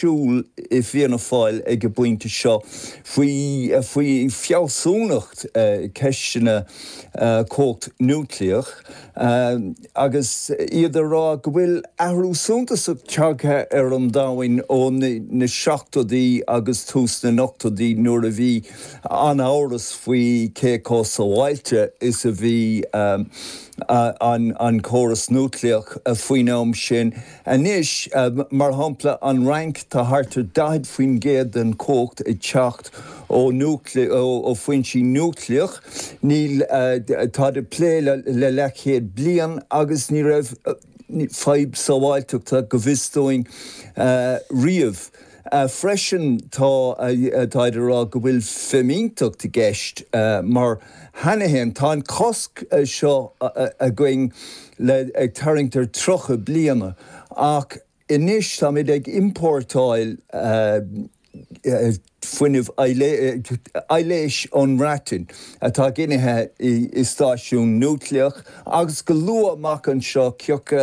siúl i bhFianna Fáil ag an bpointe seo faoi faoi fealsúnacht ceisteanna cumhacht núicléach agus iad ag rá go bhfuil athrú suntasach tagtha ar an domhain ó na seachtóidí agus tús na n-ochtóidí nuair a bhí an-amhras faoi cé chomh sábháilte is a bhí an córas núicléach faoin am sin. Anois, mar shampla, an Fhrainc, tá thart ar 40% den chumhacht ag teacht ó foinsí núicléach. Ní, tá siad ag plé le leathchéad bliain agus ní raibh fadhb sábháilteachta, go bhfios dúinn, riamh. Freisin táid ag rá go bhfuil fimínteacht i gceist mar cheana fhéin tá an cosc seo againn le ag tarraingt ar 30 bliana ach anois táimid ag importáil fuinneamh aibhléise ón mBreatain atá ginithe i stáisiún núicléach agus go luath amach anseo ciacu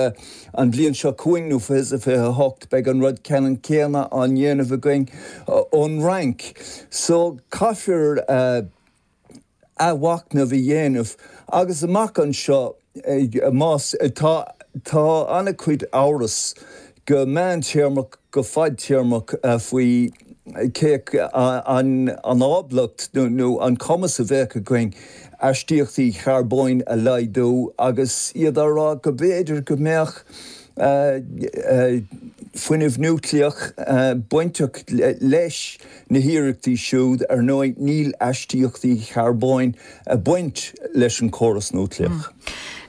An bhliain seo chugainn nó 2028 beidh an rud ceannann céanna á dhéanamh againn ón Fhrainc. So caithfear athmhachnamh a dhéanamh agus amach anseo más, tá, tá an-chuid amhras go meántéarmach go fadtéarmach faoi cén ábaltacht nó an cumas a bheadh againn. astaíochtaí charbóin a laghdú agus iad ag rá go mb'fhéidir go mbeadh fuinneamh núicléach bainteach leis na hiarrachtaí siúd. Ar ndóigh, níl astaíochtaí charbóin ag baint leis an gcóras núicléach.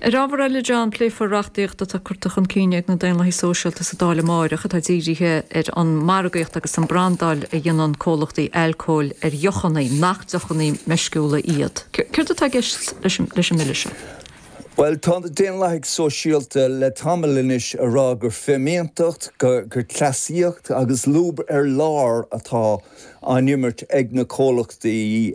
Ar ábhar eile, a Dheaglain, pléifear reachtaíocht atá curta chun cinn ag na Daonlathaigh Sóisialta sa Dáil amárach atá dírithe ar an margaíocht agus an brandáil a dhéanann comhlachtaí alcóil ar dheochanna nach deochanna meisciúla iad? Céard atá i gceist leis an mBille seo? Bhuel, tá na Daonlathaigh Sóisialta le tamall anois ag rá gur fimínteacht, gur cleasaíocht agus lúb ar lár atá á imirt ag na comhlachtaí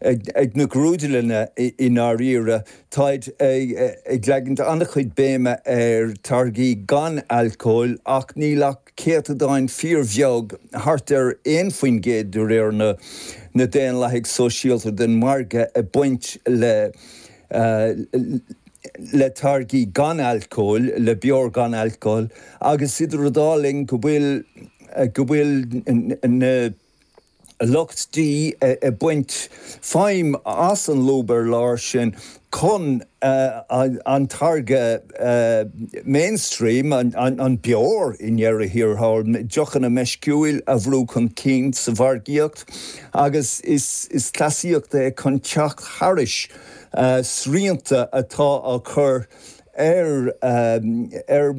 ag na grúdlanna i ndáiríre. Táid ag leagaint an-chuid béime ar táirgí gan alcóil ach níl ach céatadán fíor-bheag, thart ar aon faoin gcéad de réir na Daonlathaigh Sóisialta, den mhargadh ag baint le táirgí gan alcóil, le beoir gan alcóil agus idir an dá linn go bhfuil go bhfuil na. lucht dí ag baint feidhm as an lúb ar lár sin chun an táirge mainstream, an beoir i ndeireadh thiar thall, deochanna meisciúil a bhrú chun cinn sa mhargaíocht agus is cleasaíocht é chun teacht thairis srianta atá á chur ar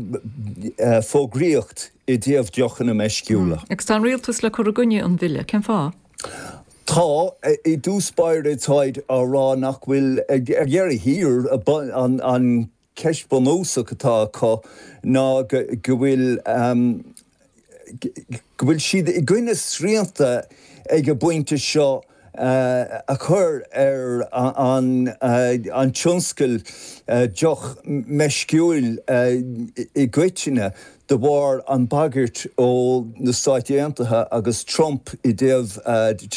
fhógraíocht i dtaobh deochanna meisciúla. Agus tá an rialtas le cur i gcoinne an bhille, cén fáth? Tá. I dtús báire táid á rá nach bhfuil, ar dheireadh thiar an cheist bhunúsach atá acu ná go bhfuil go bhfuil siad i gcoinne srianta ag an bpointe seo. a chur ar an tionscal deoch meisciúil i gcoitinne de bharr an bhagairt ó na Stáit Aontaithe agus Trump i dtaobh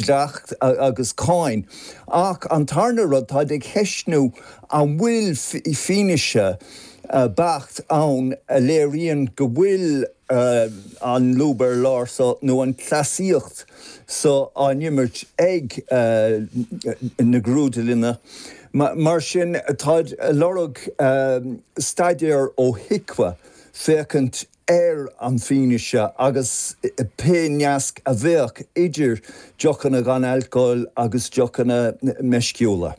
dleacht agus cáin. Ach an tarna rud, táid ag cheistniú an bhfuil fianaise beacht ann a léiríonn go bhfuil an lúb ar lár so nó an cleasaíocht. seo á n-imirt ag na grúdlanna. Mar sin táid a lorg staidéar ó HIQA féachaint ar an fhianaise agus pé nasc a bheadh idir deochanna gan alcóil agus deochanna meisciúla.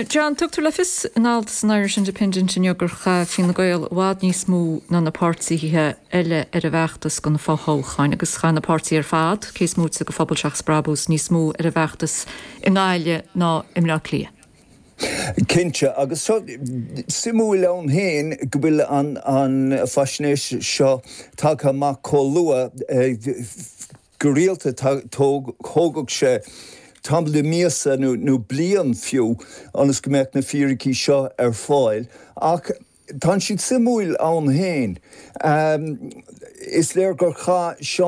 John, Tugtar le fios in alt san Irish Independent inniu gur chaith Fine Gael i bhfad níos mó ná na páirtithe eile ar a bhfeachtas do na fothoghcháin agus chaith na páirtithe ar fad, cé is móite de Phobal Seachas Brabús, níos mó ar a bhfeachtas i nGaillimh ná i mBleá Cliath. Cinnte, agus seo suimiúil ann féin go bhfuil an faisnéis seo tagtha amach chomh luath. Go rialta thógadh sé tamall de mhíosa nó bliain fiú ionas go mbeadh na fíricí seo ar fáil, ach tá siad suimiúil ann féin. Is léir gur chaith Seán.